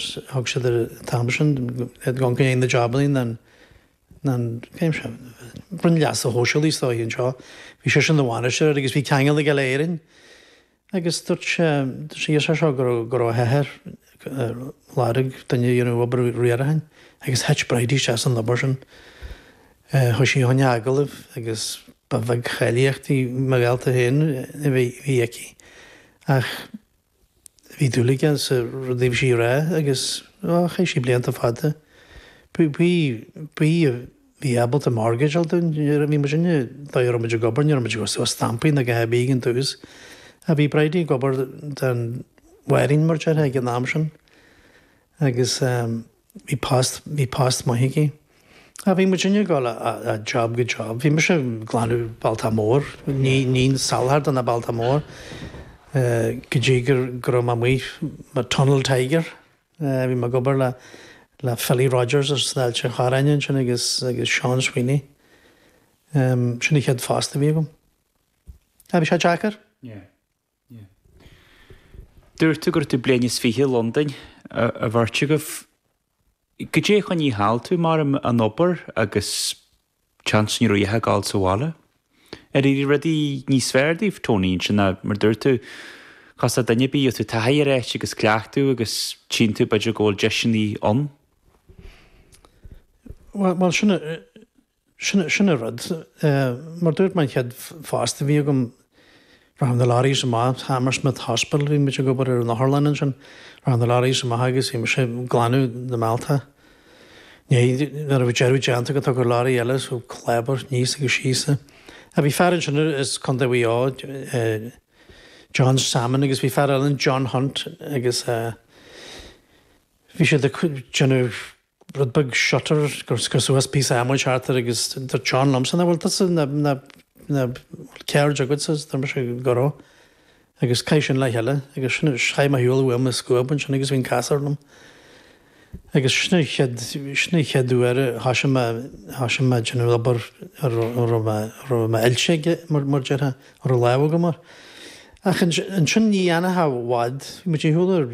Thug siad ar an t-am sin gan go ndéanann na jabannaí an Roinn Leasa Shóisialaigh is dóigh anseo. Bhí sé sin ina bhainisteoir agus bhí ceangal aige le hÉirinn agus dúirt sé sé iarr sé seo go raibh go raibh a hathair ar lorg duine a dhéanfadh obair riaracháin agus thit Bridie isteach san obair sin. Chuaigh sí chuig agallamh agus ba bheag cháilíochtaí morálta féin a bhí aici ach, Bhí dúil aige sa rud a bhí sí a rá agus chaith sí blianta fada, bhí, a bhí ábalta mortgage a fháil nuair a bhí muidinne, dóigh a raibh muid ag obair, ní raibh muid ag osteadh stampaí ná a dhath ar bith ag an tús. Ach bhí Bridie ag obair don Bhanríon, mar déarfá, ag an am sin agus. Bhí post maith aici. Bhí muid ag dul ó job go job. Bhí mise ag glanadh bealtaí móra, ní soláthar do na bealtaí móra, go dtí go raibh mé amuigh mar tunnel tiger. Bhí mé ag obair le Philly Rodgers as Ailt an Chorráin ansin agus Seán Sweeney. Sin an chéad phost a bhí agam. Bhí sé deacair. Dúirt tú go raibh tú bliain is fiche i Londain, a bheirt agaibh. Goidé a choinnigh thall tú mar an obair agus chance ní raibh a dhath ag gabháil sa bhaile? Ar éirigh rudaí níos fearr daoibh, Tony, ansin ná mar dúirt tú? Cás duine ar bith, gheobhaidh tú taithí ar áit agus cleachtadh agus tchíonn tú b'fhéidir go bhfuil deiseannaí ann. Bhuel, sin Sin, sin an rud. Mar dúirt mé an chéad phost a bhí agam, rachadh na lorries amach, Hammersmith Hospital, bhí muid ag obair ar an otharlann ansin, rachadh na lorries amach agus bhí mise ag glanadh na mbealtaí. Né, nuair a bhí deireadh déanta agat thagadh lorry eile so clábar níos agus síos é. A bhí fear ansin as Contae Mhuigh Eo, John Salmon agus bhí fear eile ann John Hunt agus eh bhí siad ag déanamh, rud beag shutter ag cur suas píosa adhmaid thart air agus dúirt John liomsa, an bhfuil tusa ina, ina, ina, bhfuil ceird agatsa agus deir mise go raibh agus caith sin le chéile agus sin é, chaith mé ar shiúl uaim an scuab ansin agus bhí an casúr liom. Agus sin an chéad, sin an chéad uair a thoisigh mé, thoisigh mé ag déanamh obair a raibh, a raibh mé, a raibh mé oilte aige mar, mar déarfá, a raibh lámh agam air. Ach ansin ní dhéanfadh i bhfad, bhí muid ag siúl ar,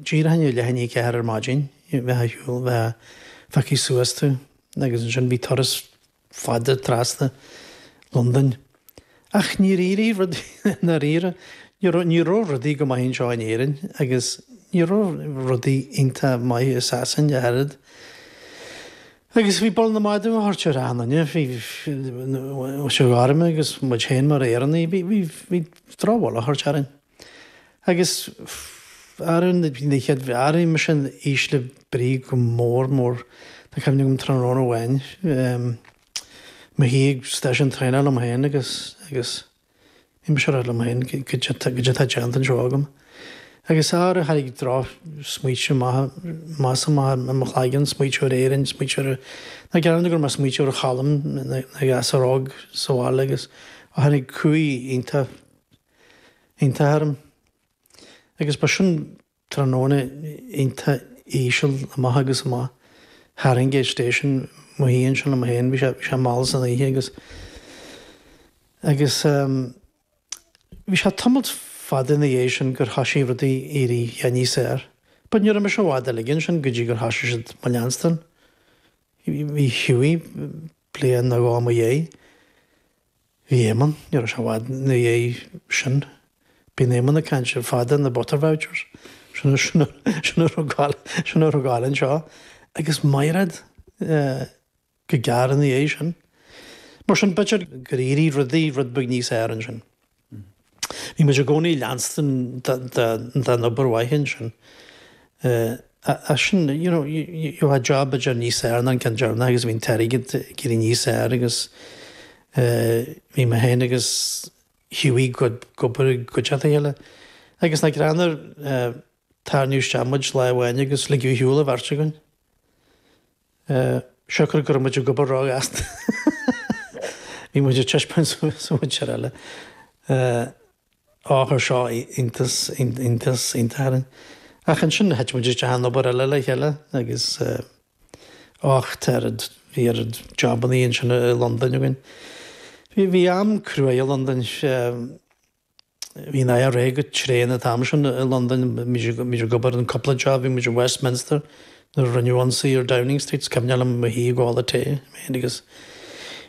díreach ina leath i ndiaidh a ceathair ar maidin, bheifeá ar shiúl, bheadh phiocfaí suas tú agus ansin bhí turas fada trasna Londain ach níor éirigh rudaí i ndáiríre, ní raibh rudaí go maith anseo in Éirinn agus ní raibh rudaí iontach maith i Sasain ach oiread agus bhí bail na madadh á tabhairt ar na daoine seo gorma agus muid féin mar Éireannaigh, bhí drochbhail á tabhairt orainn. Agus araon na chéad bhreathraíomaí sin ísle brí go mór mór. Tá cuimhne agam tráthnóna amháin, mo shuí ag stáisiún traenach liom féin agus, agus, mise ag rá liom féin goidé, goidé atá déanta anseo agam. Agus ara tháinig drochsmaointe amach is amach i mo chloigeann, smaointiú ar Éirinn, smaointiú ar, ná gearr dom go raibh mé ag smaointiú ar Cholm ina ghasúr óg sa bhaile agus ó, tháinig cumhaidh iontach iontach orm. Agus ba sin tráthnóna iontach íseal, amach agus amach. Farringdon station, mo shuí ansin liom féin, bhí sé, bhí sé mall san oíche agus, agus ehm, bhí sé tamalt fada ina dhiaidh sin gur thoisigh rudaí ag éirí níos fhearr but ní raibh mise i bhfad eile ansin go dtí gur thoisigh siad mo leanstan, bhí Hughie, bliain nó dhó i mo dhiaidh. Bhí Éamonn, ní raibh sé i bhfad ina dhiaidh sin, bíonn Éamonn ag caint ar fad ar na butter vouchers, sin a thógáil, sin a thógáil anseo, agus Mairéad go gearr ina dhiaidh sin. Mar sin, b'fhéidir gur éirigh rudaí rud beag níos fhearr ansin. Bhí muid i gcónaí ag leanstan den obair mhaith ansin. As sin, you know, achan job ag éirí níos fearr ná an ceann deireanach agus bhí an t-airgead ag éirí níos fearr agus bhí mé féin agus Hughie ag obair i gcuideachta a chéile. Agus nach greannmhar, tarraingíodh isteach muid lá amháin agus ligeadh ar shiúl an bheirt againn. siocair go raibh muid ag obair róghasta bhí muid ag taispeáint suas an mhuintir eile, á, chuir seo iontas iontas iontach orainn. Ach ansin thit muid isteach in obair eile le chéile agus ach tar bhí oiread jobannaí ansin i Londain againn. Bhí am cruaidh i Londain Bhí an IRA go tréan an t-am sin i Londain. Bhí muid ag obair ar chúpla job, bhí muid i Westminster nuair a rinneadh ionsaí ar Downing Street, is cuimhneach liom i mo shuí ag ól a tae féin agus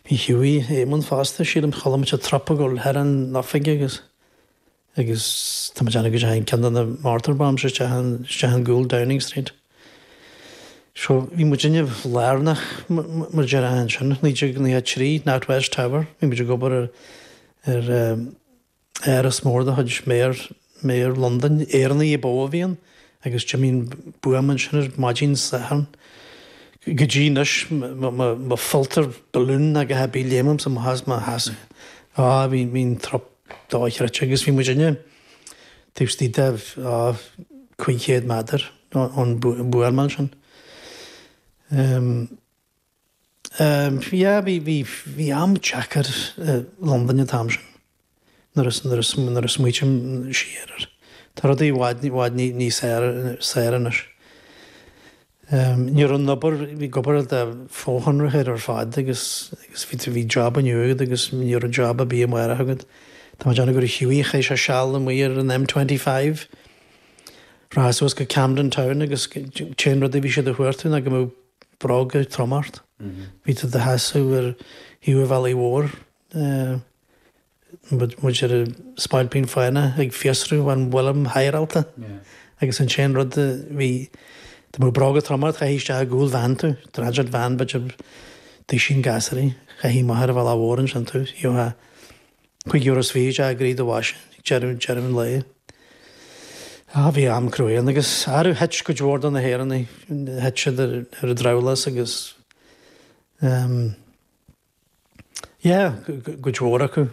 bhí Hughie Éamonn fosta, sílim. Chuala muid an trup ag dul thar an oifig agus agus tá muid ann go dteachaigh ceann de na mortar bombs isteach i, isteach i gcúl Downing Street. So bhí muidinne lárnach mar a deir ansin, 1993, NatWest Tower, bhí muid ag obair ar ar eh, Áras mór de chuid Mhéara Londain, Éireannaigh ba mhó a bhí ann, agus d'imigh buama ansin ar maidin Sathairn. Go dtí anois má pholltar balloon nó a dhath ar bith léimimse i mo sheasamh. Á, bhí an trup dochreidte agus bhí muidinne taobh istigh de, á, cúig chéad méadar ón mbuama ansin. Sea, bhí am deacair i Londain an t-am sin, nuair a smaoiním siar air. Tá rudaí i bhfad, i bhfad níos saoire anois. Ní raibh an obair, bhí obair fhada fochonraithe ar fad agus bhí job inniu agat agus ní raibh job ar bith amárach agat. Tá mé ag déanamh gur chaith sé seal amuigh ar an M25, rachfá suas go Camden Town agus an t-aon rud a, bhí siad ag cuartú ná go mbeadh, bróga trom ort. Bhí tú do sheasamh ar thaobh an bhealaigh mhóir, mar a bheadh spailpín fánach ag fiosrú an bhfuil 'hiring' haireálta, agus an t-aon rud a bhí, dá mbeadh bróga trom ort, chaithfí isteach i gcúl veain tú, dreadaithe veain, b'fhéidir, duisín gasraí, chaithfí máthair a bheith lá mhór ansin tú, gheofá. Cúig euros is fiche d'airgead de phá ag deireadh an lae. Á, bhí am cruaidh ann, agus ara thit cuid mhór de na hÉireannaigh, thit siad ar an drabhlás agus, em. yeah, cuid mhór acu,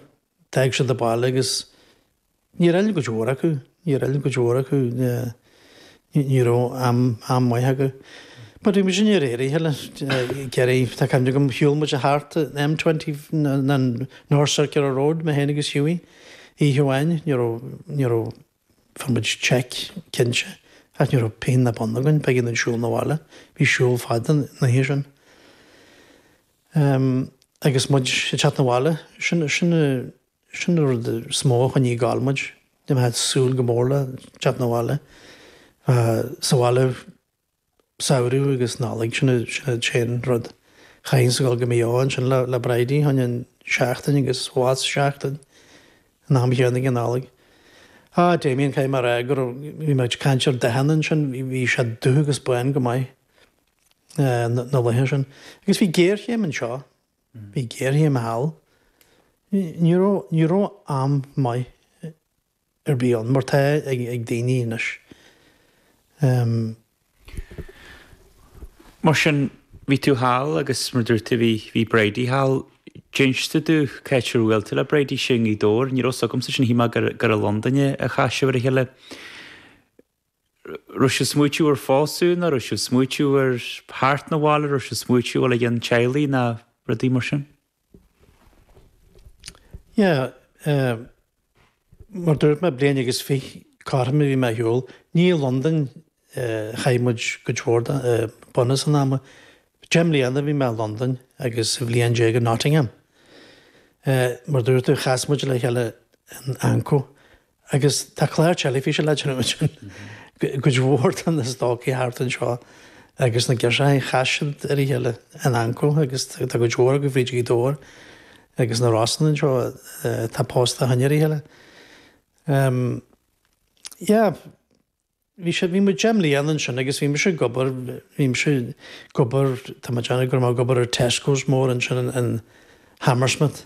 d'fhág siad an baile agus níor fhill cuid mhór acu, níor fhill cuid mhór acu, yeah. Ní raibh am maith acu. But bhí muid ann ar aon nós le Gerry, tá cuimhne agam, shiúl muid thart an M25, an North Circular Road, mé féin agus Hughie, oíche amháin, ní raibh, ní raibh, fuair muid cheque cinnte, ach ní raibh pingin ná bonn againn, b'éigean dúinn siúl 'na bhaile, bhí siúl fada an oíche sin. Agus muid ag teacht 'na bhaile, sin, sin, Sin an rud is mó a choinnigh ag gabháil muid, ná bheith ag súil go mór le teacht na bhaile. Bheith sa bhaile samhradh agus Nollaig, sin an t-aon rud. Chaithfinn scaoileadh go Maigh Eo ansin le Bridie, fá choinne seachtain agus Gaoth Dobhair seachtain, an t-am chéanna den Nollaig. Á, Damien, caithfidh mé a rá go raibh, bhí mé ag caint ar Deccy ansin, bhí sé dubh agus bán go maith na laetha sin. Agus bhí géarchéim anseo, Bhí géarchéim thall. Ní raibh am maith ar bith ann, mar atá ag daoine anois. Mar sin, bhí tú thall agus, mar a dúirt tú, bhí Bridie thall. D'inis tú cá háit ar bhuail tú le Bridie, sin i nGaoth Dobhair. Ní raibh fhios agamsa sin, shíl mé gur i Londain a chas sibh ar a chéile. raibh sibh ag smaoitiú ar phósadh nó raibh sibh ag smaoitiú ar theacht na bhaile, raibh sibh ag smaoitiú ó thaobh teaghlaigh nó rudaí mar sin? Yeah, eh, mar dúirt mé bliain agus fiche cothrom a bhí mé ar shiúl, ní i Londain, eh, a chaith muid cuid mhór de, eh, bunús an ama. Deich mbliana a bhí mé i Londain agus aon bhliain déag i Nottingham. Eh, mar dúirt tú, chas muid le chéile in Anko Agus tá clár teilifíse láidir ann sin. Cuid mhór de na stócaigh thart anseo agus na girseachaí chas siad ar a chéile in AnCO agus tá cuid mhór acu fríd Ghaoth Dobhair agus na Rosann anseo atá pósta ó shin ar a chéile. Ehm yeah. Bhí sé, bhí muid deich mbliana ansin agus bhí mise ag obair, bhí mise ag obair, tá mé ag déanamh go raibh mé ag obair ar Tesco's mór ansin in Hammersmith.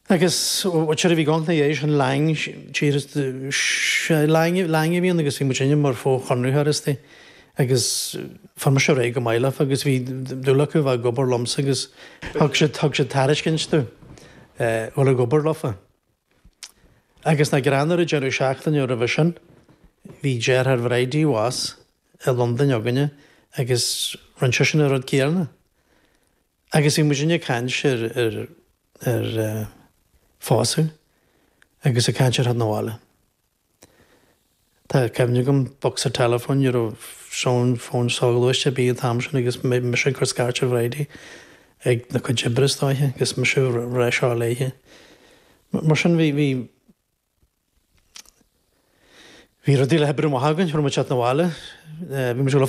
Agus whatever bhí gong ina dhiaidh sin, Laing, tír, sea, Laing, Laing a bhí ann agus bhí muidinne mar fhochonraitheoirí istigh agus fuair mise ar aghaidh go maith leofa agus bhí dúil acu a bheith ag obair liomsa agus thug siad, thug siad tairiscint domh a dhul ag obair leofa. Agus nach greannmhar, an deireadh seachtaine roimhe sin, bhí deartháir Bhridie abhus i Londain againne agus rinne seisean an rud céanna. Agus bhí muidinne ag caint ar, ar, ar eh, phósadh agus ag caint ar theacht na bhaile. Tá cuimhne agam, bocsa teileafóin, ní raibh fón, fón soghluaiste ar bith an t-am sin agus mé, mise ag cur scairt ar Bhridie ag na cuid oibre is dóiche agus mise a rá seo léithe. Mar sin bhí, bhí, bhí rudaí le hoibriú amach againn, fuair muid teacht na bhaile, bhí muid ag dul a